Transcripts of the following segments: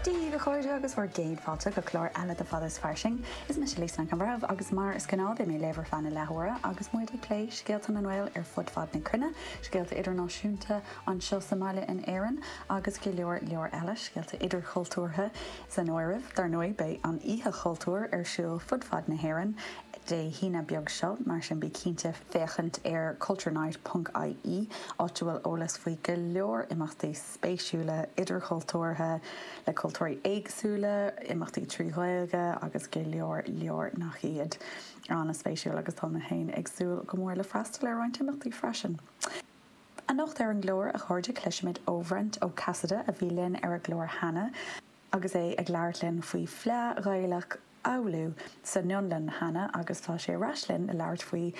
Dia dhaoibh a chairde agus bhur gcéad fáilte go clár eile de Fad is Fairsing. Is mise Lisa Nic an Bhreithimh agus mar is gnáth beidh mé libh ar feadh na leathuaire agus muid ag plé scéalta na nGael ar fud fad na cruinne, scéalta idirnáisiúnta anseo sa mbaile in Éirinn agus go leor leor eile, scéalta idirchultúrtha san áireamh. Dar ndóigh beidh an Oíche Chultúir ar siúl fud fad na hÉireann Dé hAoine beag seo mar sin bí cinnte féachaint ar culturenight.ie áit a bhfuil eolas faoi go leor imeachtaí. spéisiúla idirchultúrtha le cultúirí éagsúla, imeachtaí trí Ghaeilge agus go leor leor nach iad. An-spéisiúla agus tá mé féin ag súil go mór le freastal ar roinnt imeachtaí freisin. Anocht ar an gclár, a chairde, cloisfimid ó Bhrent Ó Casaide, a bhí linn ar an gclár cheana, agus é ag labhairt linn faoi Fleá Ghaelach Oulu san Fhionlainn cheana agus tá sé ar ais linn le labhairt faoi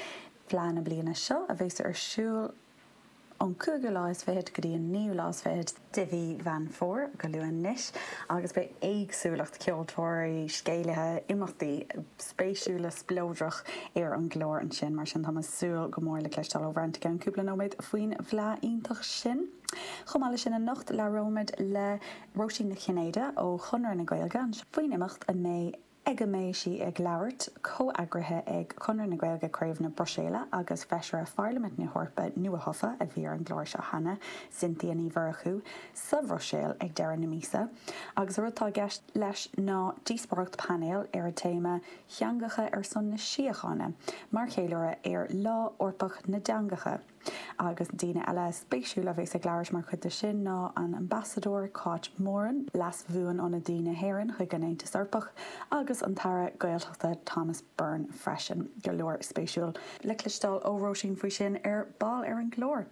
fhleá na bliana seo a bheas ar siúl ón cúigiú lá is fichead go dtí an naoú lá is fichead de mhí Mheán Fómhair go luath anois, agus beidh éagsúlacht ceoltóirí, scéalaithe, imeachtaí spéisiúla, spleodracha ar an gclár ansin, mar sin tá mé ag súil go mór le cloisteáil ó Bhrent i gceann cúpla nóiméad faoin bhfleá iontach sin. Chomh maith leis sin anocht labhróimid le Róisín Nic Chinnéide ó Chonradh na Gaeilge anseo faoin imeacht a mbeidh ag a mbeidh sí ag labhairt, comheagraithe ag Conradh na Gaeilge, Craobh na Bruiséile, agus Feisire Pharlaimint na hEorpa nuathofa, a bhí ar an gclár seo cheana, Cynthia Ní Mhurchú, sa Bhruiséil ag deireadh na míosa, agus an rud atá i gceist leis ná díospóireacht painéil ar an téama 'Teangacha ar son na Síochána' mar cheiliúradh ar Lá Eorpach na dTeangacha. agus daoine eile spéisiúla a bheas ag labhairt mar chuid de sin ná an tAmbasadóir Cáit Moran, Leas-Bhuanionadaí na hÉireann chuig an Aontas Eorpach, agus an tAire Gaeltachta Thomas Byrne freisin. Go leor spéisiúil le cloisteáil ó Róisín faoi sin ar ball ar an gclár.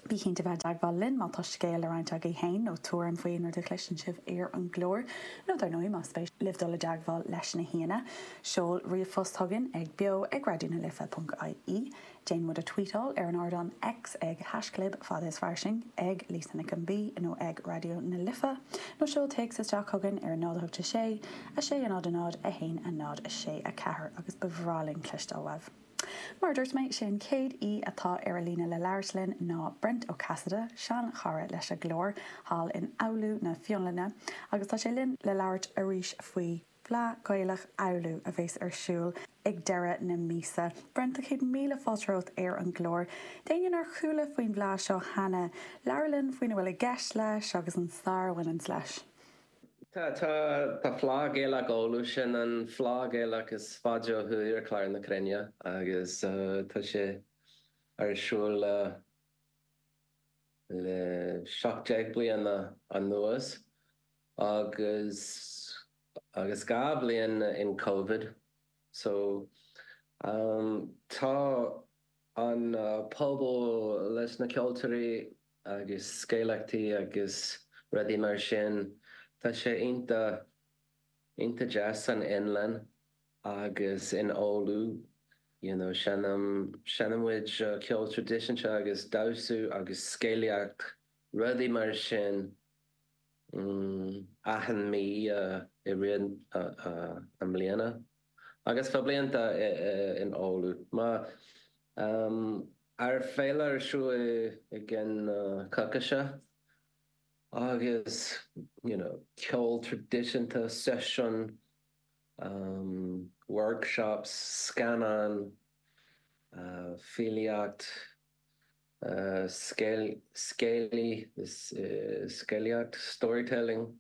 Bí cinnte a bheith i dteagmháil linn má tá scéal le roinnt agaibh féin nó tuairim faoi aon rud a chloiseann sibh ar an gclár. Nó dar ndóigh, más spéis libh dul i dteagmháil leis na haíonna, seol ríomhphost chugainn ag beo ag raidionalife.ie. Déan muid a tvuíteáil ar an ardán X ag haischlib Fad is Fairsing, ag Lisa Nic an B nó ag Raidió na Life, nó seol téacs isteach chugainn ar 0 8 6 6 0 0 0 1 0 6 4 agus ba bhreá linn cloisteáil uaibh. Mar a dúirt mé, sé an chéad aoi atá ar an líne le labhairt linn ná Brent Ó Casaide, seanchara leis an gclár thall in Oulu na Fionlainne, agus tá sé linn le labhairt arís faoi. Fleadh Gaelach Oulu a bheas ar siúl ag deireadh na míosa. Brent, céad míle fáilte romhat ar an gclár. D'éinne nár chuala faoin bhfleadh seo cheana, labhair linn faoina bhfuil i gceist leis agus an stair a bhaineanns leis. Tá Fleadh Gaelach Oulu, sin an fleadh Gaelach is faide ó thuaidh ar chlár na cruinne agus tá sé ar siúl le seacht déag bliana anuas. agus agus dhá bhliain in Covid so tá an pobal leis na ceoltóirí agus scéalaíochta agus rudaí mar sin tá sé iontach iontach deas san Fhionlainn agus in Oulu you know seinn seinnimid ceol traidisiúnta agus damhsa agus scéalaíocht rudaí mar sin achan mí i rith na mbliana, agus fá bhlianta in Oulu ár féile ar siúl i gcionn na coicíse, agus you know ceol traidisiúnta, seisiúin, workshops, scannáin, filíocht. scéalaí, scéalaíocht, storytelling,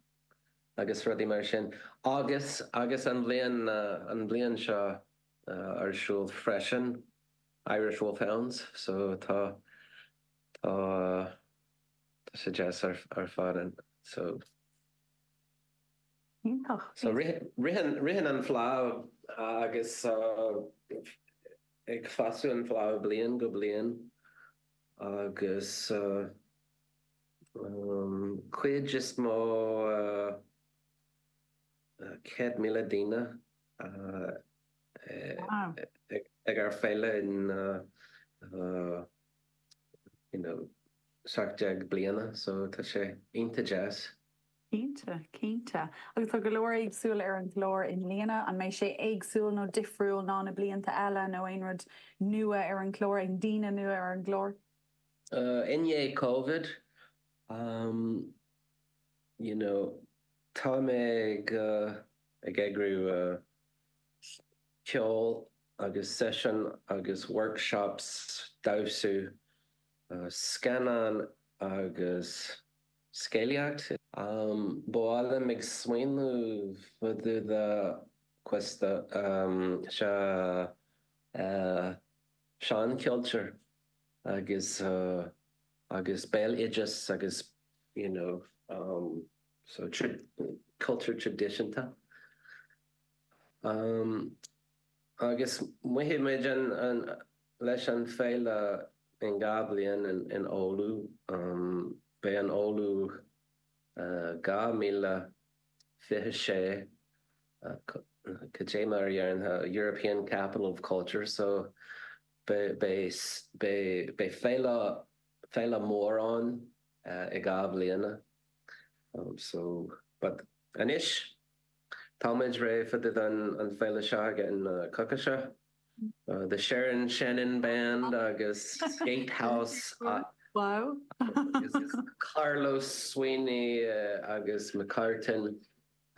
agus rudaí mar sin. Agus, agus an bhliain, an bhliain seo ar siúl freisin, Irish Wolfhounds, so tá, tá, tá sé deas ar, ar fad and so. Iontach. So ritheann, ritheann an fhleadh agus. ag fás an fhleadh ó bhliain go bliain agus an chuid is mó, 100,000 duine, ag ár féile in you know 17 bliana so tá sé iontach deas. Cinnte, cinnte. Agus tá go leor éagsúil ar an gclár i mbliana. An mbeidh sé éagsúil nó difriúil ná na blianta eile nó aon rud nua ar an gclár, aon daoine nua ar an gclár? I ndiaidh Covid, you know, tá muid ag eagrú ceol agus seisiún agus workshops, damhsú, scannáin agus. scéalaíocht. Bhuel bím ag smaoineamh fá dtaobh de ceist sa seanchultúr agus agus béaloideas agus you know so cultúr traidisiúnta. Agus beidh muid leis an féile in dhá bhliain in Oulu. Beidh an Oulu 2026 cad é mar a déarfá European Capital of Culture so beidh féile mór ann i dhá bhliana so but anois. Táimid réidh fá dtaobh den féile seo againn na coca seo. The Sharon Shannon Band agus Gatehouse agus Carlos Sweeney agus McCartin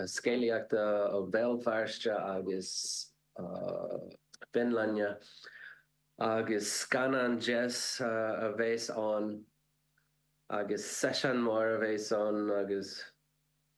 scéalaíochta ó Bhéal Feirste agus ó Fionlainne agus scannán deas a bhéas ann agus seisiún mór a bhéas ann agus.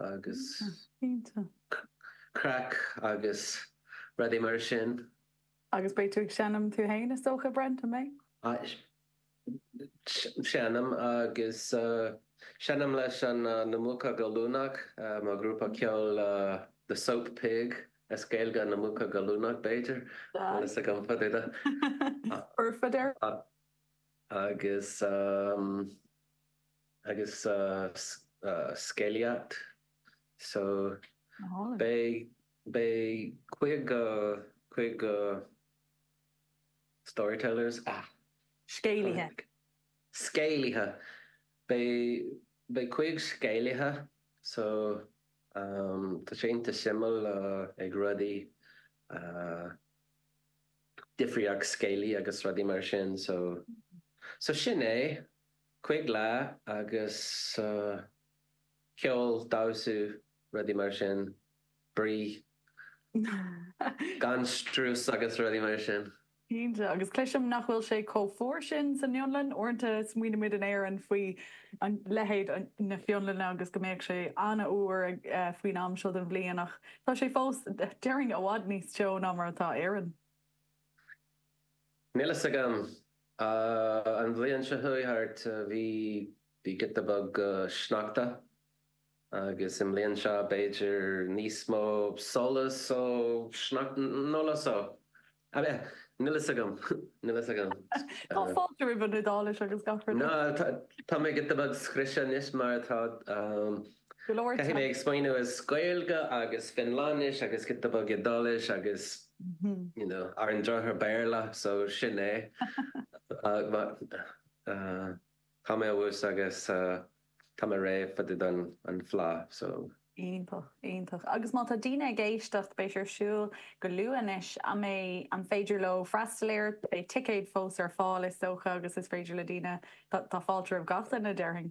agus craic agus rudaí mar sin. Agus beidh tú ag seinm tú fhéin is dócha, Brent, an mbeidh? Seinnim, agus seinnim leis na Muca Gallúnach, mo ghrúpa ceoil The Soap Pig, as Gaeilge Na Muca Gallúnach b'fhéidir, níl fhios agam cad é do. Oirfeadh, deir. Agus. agus sa scéalaíocht so beidh cúig storytellers, scéalaithe, scéalaithe, beidh cúig scéalaithe so tá sé iontach suimiúil ag rudaí difríocht scéalaí agus rudaí mar sin so sin é. Cúig lá agus ceol, damhsa, rudaí mar sin, spraoi gan strus agus rudaí mar sin. Cinnte, agus cloisim nach bhfuil sé chomh fuar sin san Fhionlainn. Uaireanta smaoinimid in Éirinn faoi leithéid na Fionlainne agus go mbeadh sé an-fhuar faoin am seo den bhliain ach tá sé fós, déarfainn, i bhfad níos teo ná mar atá Éirinn. Níl fhios agam. An bhliain seo a chuaigh thart bhí giota beag sneachta agus i mbliain seo b'fhéidir níos mó solas ó shneacht nó le só. Níl fhios agam. Níl fhios agam. Tá fáilte roimh an Iodáilis agus gach rud eile. Tá mé giota beag scriosta anois mar tá Caithfidh mé ag smaoineamh as Gaeilge agus Fionlainnis agus giota beag Iodáilis agus you know ar an drochuair Béarla so sin é tá mé abhus agus tá mé réidh fá dtaobh den fhleadh so. Iontach, iontach. Agus má tá daoine ag éisteacht, beidh sé ar siúl go luath anois, an mbeidh, an féidir leo freastal air, beidh ticéad fós ar fáil is dócha agus is féidir le daoine, tá fáilte roimh gach duine déarfainn.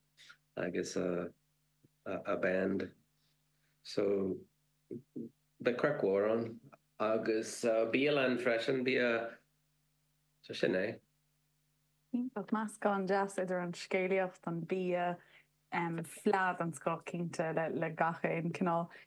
agus an band so beidh craic mhór ann agus bialann freisin an bia so sin é. Iontach. Meascán deas idir an scéalaíocht, an bia, fleadh den scoth cinnte de gach aon cineál.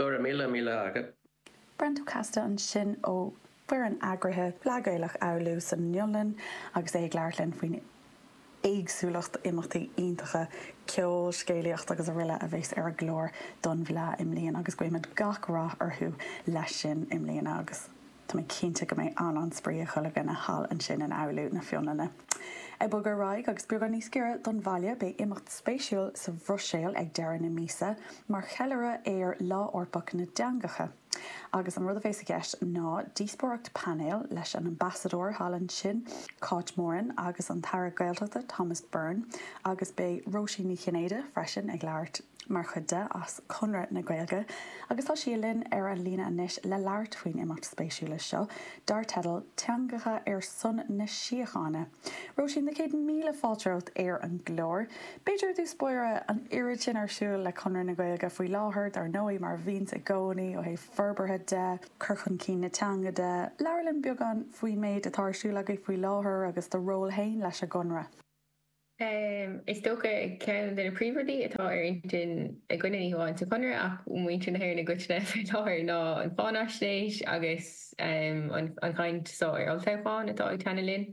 Go raibh míle maith agat. Brentocasta ansin ó fhoireann eagraithe Fleadh Ghaelach Oulu san Fhionlainn agus é ag labhairt linn faoin éagsúlacht imeachtaí iontacha, ceol, scéalaíocht agus araile a bheas ar an gclár don bhFleadh i mbliana agus guímid gach rath orthu leis sin i mbliana agus. Tá mé cinnte go mbeidh an-spraoi ag chuile dhuine thall ansin in Oulu na Fionlainne. Ag bogadh ar aghaidh agus beagán níos giorra don bhaile, beidh imeacht spéisiúil sa Bhruiséil ag deireadh na míosa mar cheiliúradh ar Lá Eorpach na dTeangacha. Agus an rud a bheas i gceist ná díospóireacht painéil leis an Ambasadóir thall ansin, Cáit Moran, agus an tAire Gaeltachta, Thomas Byrne, agus beidh Róisín Ní Chinnéide freisin ag labhairt. mar chuid de, as Conradh na Gaeilge, agus tá sí linn ar an líne anois le labhairt faoin imeacht spéisiúil seo, dar teideal 'Teangacha ar son na Síochána'. Róisín, na céad míle fáilte romhat ar an gclár. B'fhéidir, i dtús báire, an oiread sin ar siúl le Conradh na Gaeilge faoi láthair, dar ndóigh, mar a bhíonns i gcónaí, ó thaobh forbartha de, cur chun cinn na teanga de, labhair linn beagán faoin méid atá ar siúl agaibh faoi láthair agus do ról fhéin leis an gConradh. Is dócha ceann de na príomhrudaí atá ar intinn againne ní hamháin sa Chonradh ach muintir na hÉireann i gcoitinne faoi láthair ná an cháinaisnéis agus an chaint so ar olltoghchán atá ag teannadh linn.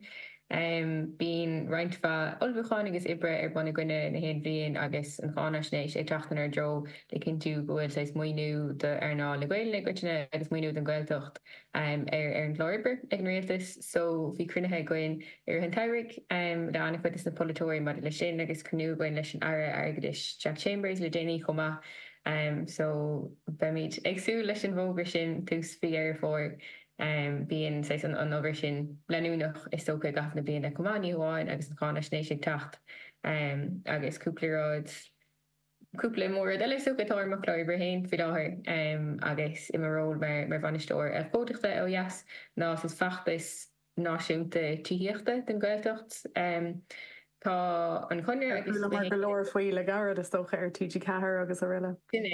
Bíonn roinnt mhaith ullmhúcháin agus oibre ar bun againne in aon bhliain agus an cháinaisnéis ag teacht inár dtreo le cinntiú go bhfuil saghas maoiniú d'earnáil na Gaelainne i gcoitinne agus maoiniú don Ghaeltacht ar an gclár oibre ag an Rialtas so bhí cruinnithe againn i rith an tsamhraidh le an-chuid de na polaiteoirí maidir leis sin agus cruinniú againn leis an Aire Airgeadais Jack Chambers le déanaí chomh maith so beimid ag súil leis an bhfógra sin tús mhí Dheireadh Fómhair. Bíonn saghas an obair sin leanúnach is dócha i gcaitheamh na bliana chomh maith, ní hamháin agus an cháinaisnéis ag teacht agus cúpla rud cúpla mór-rud eile. is dócha atá ar mo chlár oibre féin faoi láthair agus i mo ról mar Bhainisteoir Abhcóideachta ó dheas ná saghas feachtas náisiúnta tithíochta don Ghaeltacht. Tá an Conradh agus na. Chualamar go leor faoi le gairid, is dócha, ar TG Ceathair agus aroile. Sin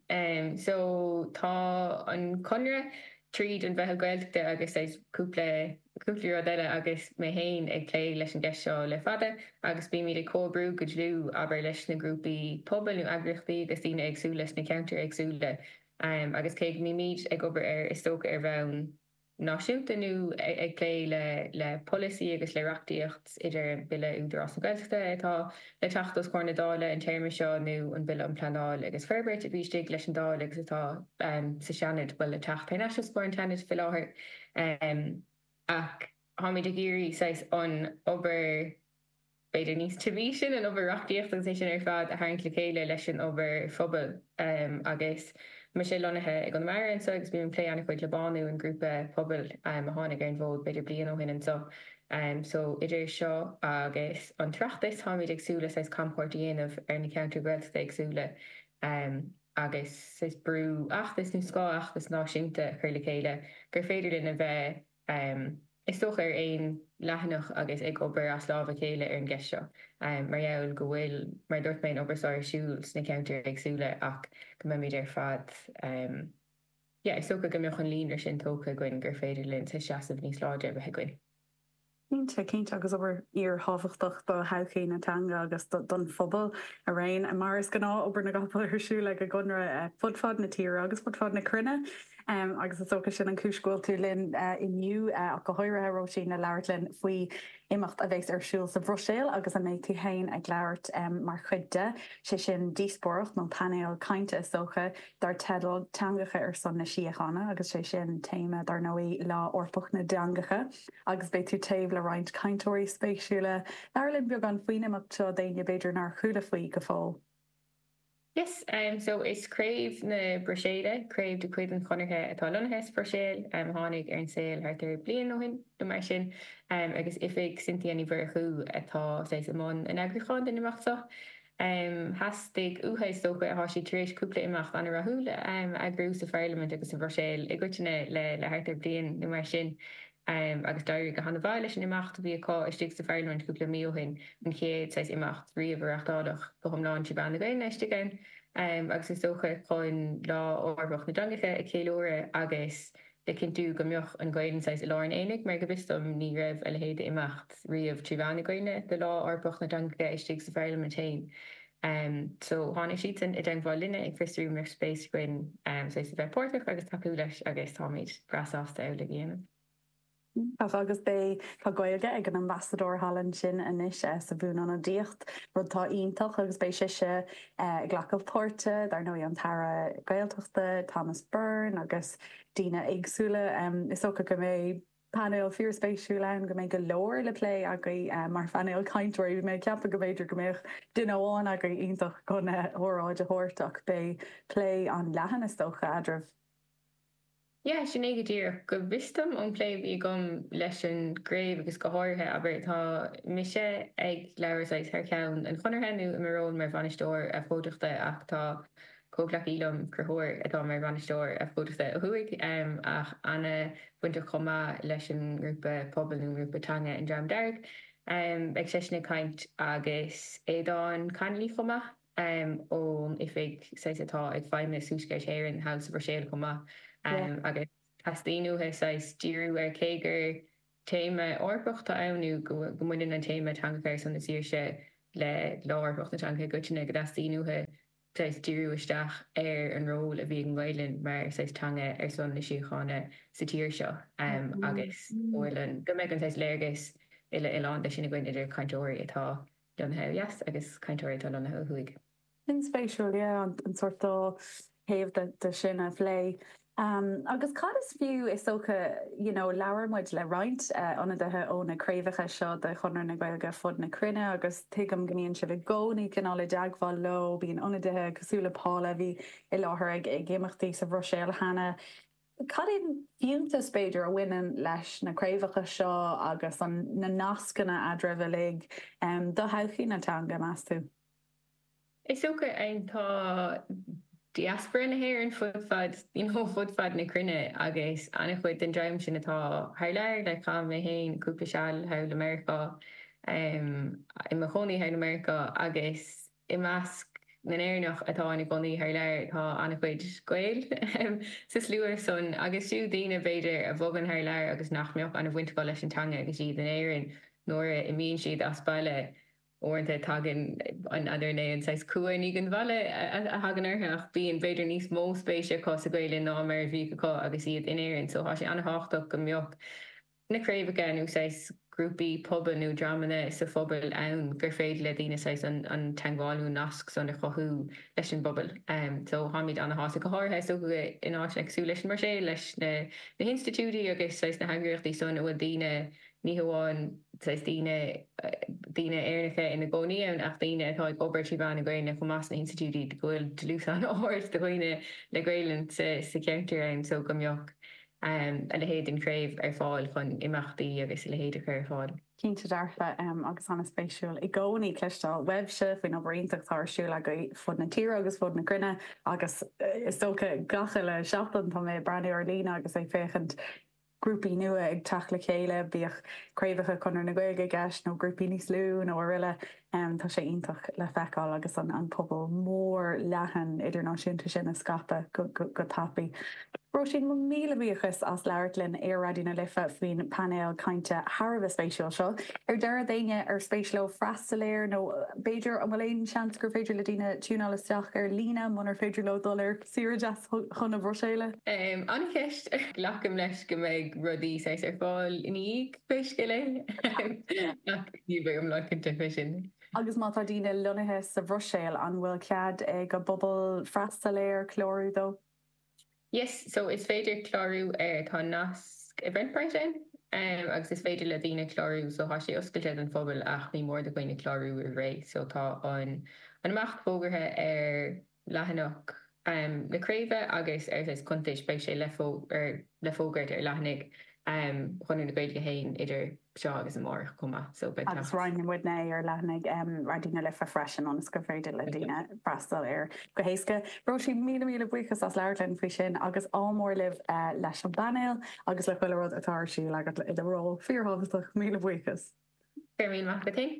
é. So, tá an Conradh, tríd an Mheitheal Gaeltachta agus cúpla. Cúpla rud eile, agus mé féin ag plé leis an gceist seo le fada, agus bímid ag comhoibriú go dlúth, abair, leis na grúpaí pobail nó eagraíochtaí agus daoine éagsúla sna ceantair éagsúla, agus cé go mbímid ag obair ar, is dócha, ar bhonn náisiúnta nó ag plé le polasaí agus le reachtaíocht, idir an Bille Údarás na Gaeltachta atá le teacht os comhair na Dála an téarma seo nó an Bille um Pleanáil agus Forbairt a bhí istigh leis an Dáil agus atá sa Seanad, bhuel, le teacht thar n-ais os comhair an tSeanaid faoi láthair. Ach táimid ag iarraidh saghas an obair b'fhéidir níos tiubhaí sin, an obair reachtaíochta agus é sin ar fad, a tharraingt le chéile leis an obair phobail. Agus mise lonnaithe i gConamara anseo agus bím ag plé ana-chuid le BÁNÚ, an grúpa pobail a tháinig ar an bhfód b'fhéidir bliain ó shin anseo. So idir seo agus an tOireachtas táimid ag súil le saghas camchuairt a dhéanamh ar na ceantair Ghaeltachta éagsúla. agus saghas bratfheachtas nó scáthfheachtas náisiúnta a chur le chéile gur féidir linn a bheith, is dócha, ar aon leathanach agus ag obair as lámh a chéile ar an gceist seo mar gheall go bhfuil, mar a dúirt mé, an obair seo ar siúl sna ceantair éagsúla ach go mbeimid ar fad, yeah, is dócha go mbeadh an líonra sin tógtha againn gur féidir linn seasamh níos láidre a bheith againn. Cinnte, cinnte, agus obair fhíorthábhachtach do thodhchaí na teanga agus don phobal araon. Mar is gnáth, obair na gcapall ar siúl ag an gConradh fud fad na tíre agus fud fad na cruinne, agus is dócha sin an chúis go bhfuil tú linn inniu, ach go háirithe, a Róisín, le labhairt linn faoi imeacht a bheas ar siúl sa Bhruiséil agus a mbeidh tú féin ag labhairt mar chuid de, sé sin, díospóireacht, nó painéal cainte is dócha, dar teideal 'Teangacha ar son na Síochána' agus sé sin téama, dar ndóigh, Lá Eorpach na dTeangacha agus beidh tú taobh le roinnt cainteoirí spéisiúla. Labhair linn beagán faoin imeacht seo d'éinne b'fhéidir nár chuala faoi go fóill. Yes, so is craobh na Bruiséile, craobh de chuid an Chonartha atá lonnaithe sa Bhruiséil, a tháinig ar an saol thart ar bliain ó shin nó mar sin agus oifig Cynthia Ní Mhurchú atá saghas i mbun an eagrúcháin don imeacht seo. Theastaigh uathu, is dócha, tá siad tar éis cúpla imeacht an-rathúil a eagrú sa Pharlaimint agus sa Bhruiséil i gcoitinne le thart ar bliain nó mar sin, agus d'éirigh go han-mhaith leis an imeacht a bhí acu istigh sa Pharlaimint cúpla mí ó shin, an chéad saghas imeacht riamh a reáchtáladh go hiomlán trí mheán na Gaelainne istigh ann, agus is dócha chun Lá Eorpach na dTeangacha a cheiliúradh agus, le cinntiú go mbeadh an Ghaelainn saghas i lár an aonaigh, mar go bhfios dom ní raibh a leithéid d'imeacht riamh trí mheán na Gaelainne do Lá Eorpach na dTeangacha istigh sa Pharlaimint féin. So tháinig siadsan i dteangmháil linne ag fiosrú an mbeadh spéis againn saghas a bheith páirteach agus tacú leis agus táimid breá sásta amhlaidh a dhéanamh. Ach, agus beidh, tá Gaeilge ag an Ambasadóir Holland sin anois sa bhuanionadaíocht, rud atá iontach, agus beidh sise ag glacadh páirte, dar ndóigh, an tAire Gaeltachta, Thomas Byrne, agus daoine éagsúla. Is dócha go mbeidh painéal fíorspéisiúil ann, go mbeidh go leor le plé agaibh mar phainéal cainteoirí. Bhí mé ag ceapadh go mb'fhéidir go mbeadh duine amháin agaibh iontach chun óráid a thabhairt, ach beidh plé an-leathan, is dócha, eadraibh. Yeah, sin é go díreach. Go bhfios dom, ón bplé a bhí agam leis an gcraobh agus go háirithe, abair, tá mise ag labhairt saghas thar cheann an Chonartha nó i mo ról mar bhainisteoir abhcóideachta ach tá comhghleacaí liom, Conchúr, atá mar bhainisteoir abhcóideachta ó thuaidh ach an-bhainteach chomh maith leis an ngrúpa pobail nó an ngrúpa teanga An Dream Dearg. Beidh seisean ag caint agus Aodhán Connolly chomh maith. ón oifig saghas atá ag feidhmeannas Thuaisceart Éireann, thall sa Bhruiséil chomh maith, agus teastaíonn uathu saghas díriú ar Cé gur téama Eorpach atá ann nó go mbaineann an téama Teangacha ar son na Síochána le Lá Eorpach na dTeangacha i gcoitinne, go dteastaíonn uathu saghas díriú isteach ar an ról a bhí ag an nGaelainn mar saghas teanga ar son na síochána sa tír seo agus go mbeidh an saghas léargas uile-oileánda sin againn idir cainteoirí atá lonnaithe ó dheas agus cainteoirí atá lonnaithe ó thuaidh. Sin spéisiúil, yeah, an sórt dá thaobh de sin a phlé. Agus cad is fiú, is dócha, you know, labhair muid le roinnt ionadaithe ó na craobhacha seo de Chonradh na Gaeilge fud na cruinne agus tuigim go mbíonn sibh i gcónaí cineál i dteagmháil leo, bíonn ionadaithe cosúil le Paula a bhí i láthair ag imeachtaí sa Bhruiséil cheana, Cad é an fiúntas, b'fhéidir, a bhaineann leis na craobhacha seo agus na nascanna eadraibh uilig do thodhchaí na teanga, meas tú? Is dócha, tá diaspora na hÉireann fud fad, you know, fud fad na cruinne agus ana-chuid den dream sin atá thar lear, like, chaith mé féin cúpla seal thall i Meiriceá, em, i mo chónaí thall i Meiriceá agus, I measc na nÉireannach atá ina gcónaí thar lear tá an-chuid Gael sa slua san, agus fiú daoine, b'fhéidir, a bhogann thar lear agus nach mbeadh ana bhaint acu leis an teanga agus iad in Éirinn. Nuair a imíonn siad as baile, uaireanta tagann an, n'fheadar, an saghas cumha i ndiaidh an bhaile a thagann orthu, bíonn, b'fhéidir, níos mó spéise acu sa Ghaelainn ná mar a bhíodh acu agus iad in Éirinn. So tá sé ana-thábhachtach go mbeadh. na craobhacha nó saghas grúpaí pobail nó dreamanna sa phobal ann gur féidir le daoine saghas an an teangmháil nó an nasc san a chothú leis an bpobal. So táimid ana-shásta go háirithe is dócha in áiteanna cosúil leis an mBruiséil leis na na hinstitiúidí agus saghas na heagraíochtaí san a bhfuil daoine ní hamháin saghas daoine daoine Éireannacha ina gcónaí ann ach daoine atá ag obair trí mheán na Gaelainne chomh maith sna hinstitiúidí go bhfuil dlús an-ard de dhaoine le Gaelainn sa sa cheantar ann so go mbeadh a leithéid den chraobh ar fáil chun imeachtaí agus a leithéid a chur ar fáil. Cinnte dearfa agus an-spéisiúil i gcónaí cloisteáil uaibhse faoin obair iontach atá ar siúl agaibh fud na tíre agus fud na cruinne agus is dócha gach uile seachtain tá mé ag breathnú ar líne agus ag féachaint grúpaí nua ag teacht le chéile, bíodh craobhacha Chonradh na Gaeilge i gceist nó grúpaí níos lú nó araile. Tá sé iontach le feiceáil agus an pobal mór leathan idirnáisiúnta sin ag scaipeadh go tapaidh. Róisín, mo míle buíochas as labhairt linn ar Raidió na Life faoin bpainéal cainte thar a bheith spéisiúil seo. Ar deireadh, d'éinne ar spéis leo freastal air, nó b'fhéidir an bhfuil aon seans gur féidir le daoine tiúnáil isteach ar líne munar féidir leo dul ar saoire deas chun na Bruiséile? An-cheist. Glacaim leis go mbeidh rudaí saghas ar fáil ina dhiaidh. Pé scéal é, ach ní bheidh iomlán cinnte fé sin. Agus má tá daoine lonnaithe sa Bhruiséil, an bhfuil cead ag an bpobal freastal air, clárú dó? Yes, so is féidir clárú air, tá nasc Eventbrite ann agus is féidir le daoine clárú, so tá sé oscailte don phobal ach ní mór do dhaoine clárú roimh ré, so tá an an imeacht fógartha ar. leathanach na craoibhe agus ar saghas cuntais, beidh sé le fógairt ar leathanaigh Chonradh na Gaeilge féin idir seo agus amárach chomh maith. So beidh teacht. Roinnfidh muidne é ar leathanaigh Raidió na Life freisin ionas gur féidir le daoine freastal air go héasca. Róisín, míle míle buíochas as labhairt linn faoi sin agus ádh mór libh leis an bpainéal agus le chuile rud atá ar siúl agat i do ról fíorthábhachtach. Míle buíochas. Go raibh míle maith agat.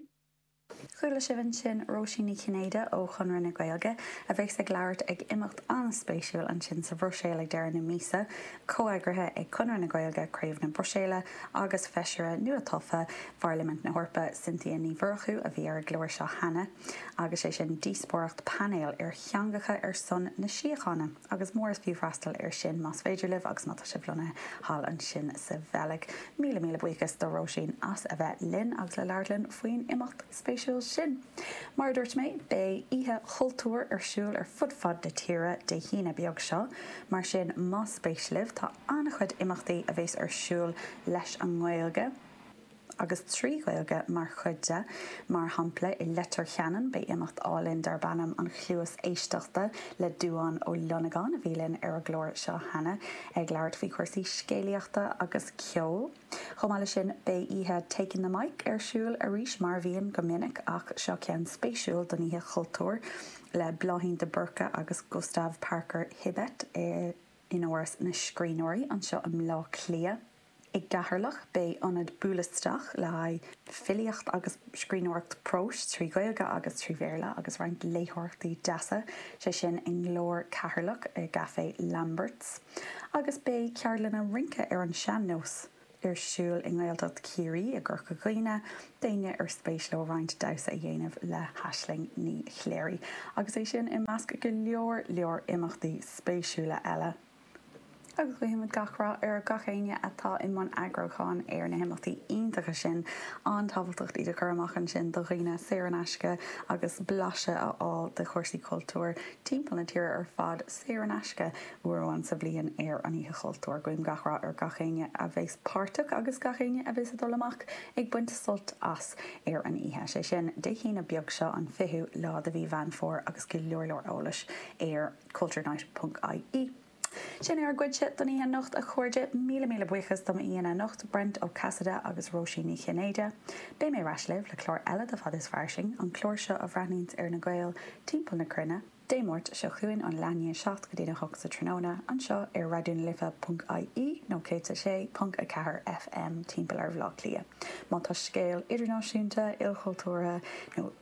Chuala sibh ansin Róisín Ní Chinnéide ó Chonradh na Gaeilge a bheas ag labhairt ag imeacht an-spéisiúil ansin sa Bhruiséil ag deireadh na míosa, comheagraithe ag Conradh na Gaeilge, Craobh na Bruiséile, agus Feisire nua-tofa Pharlaimint na hEorpa, Cynthia Ní Mhurchú, a bhí ar an gclár seo cheana, agus sé sin díospóireacht painéil ar Theangacha ar son na Síochána. Agus is mór is fiú freastal air sin más féidir libh agus má tá sibh lonnaithe thall ansin sa Bheilg. Míle míle buíochas do Róisín as a bheith linn agus le labhairt linn faoin imeacht spéisiúil sin. Mar a dúirt mé, beidh Oíche Chultúir ar siúl ar fud fad na tíre Dé hAoine beag seo, mar sin más spéis libh, tá an-chuid imeachtaí a bheas ar siúl leis an nGaeilge. agus trí Ghaeilge mar chuid de, mar shampla i Leitir Ceanainn beidh imeacht álainn darb ainm 'An Chluas Éisteachta' le Dubhán Ó Longáin a bhí linn ar an gclár seo cheana ag labhairt faoi chúrsaí scéalaíochta agus ceoil. Chomh maith leis sin beidh oíche 'Taking the Mic' ar siúl arís mar a bhíonn go minic ach seo ceann spéisiúil don Oíche Chultúir le Bláithín de Búrca agus Gustav Parker Hibbett in Áras na Scríbhneoirí anseo i mBleá Cliath. I gCeatharlach, beidh ionad buail isteach le haghaidh filíocht agus scríbhneoireacht próis trí Ghaeilge agus trí Bhéarla agus roinnt léitheoireachtaí deasa, sé sin i nGlór Ceatharlach, i gCafé Lambert's, agus beidh ceardlanna rince ar an sean-nós ar siúl i nGaeltacht Chiarraí, i gCorca Dhuibhne, d'éinne ar spéis leo roinnt damhsa a dhéanamh le hAisling Ní Chléirigh, agus é sin i measc go leor leor imeachtaí spéisiúla eile. agus guímid gach rath ar gach éinne atá i mbun eagrúcháin ar na himeachtaí iontacha sin, an-tábhachtach iad a chur amach ansin do dhaoine, saor in aisce, agus blaiseadh a fháil de chúrsaí cultúir timpeall na tíre ar fad, saor in aisce, uair amháin sa bhliain ar an Oíche Chultúir. Guím gach rath ar gach éinne a bheas páirteach agus gach éinne a bheas ag dul amach ag baint sult as ar an oíche, sé sin, Dé hAoine beag seo, an 20ú lá de mhí Mheán Fómhair agus go leor leor eolais ar culturenight.ie Sin é ár gcuidse don oíche anocht, a chairde. Míle míle buíochas do m'aíonna anocht, Brent Ó Casaide agus Róisín Ní Chinnéide. Beidh mé ar ais libh le clár eile de Fad is Fairsing, an clár seo a bhreathnaíonns ar na Gaeil timpeall na cruinne, Dé Máirt seo chugainn óna 7 go dtí an 8 sa tráthnóna, anseo ar raidionalife.ie nó 106.4 FM timpeall ar Bhleá Cliath. Má tá scéal idirnáisiúnta, ilchultúrtha nó.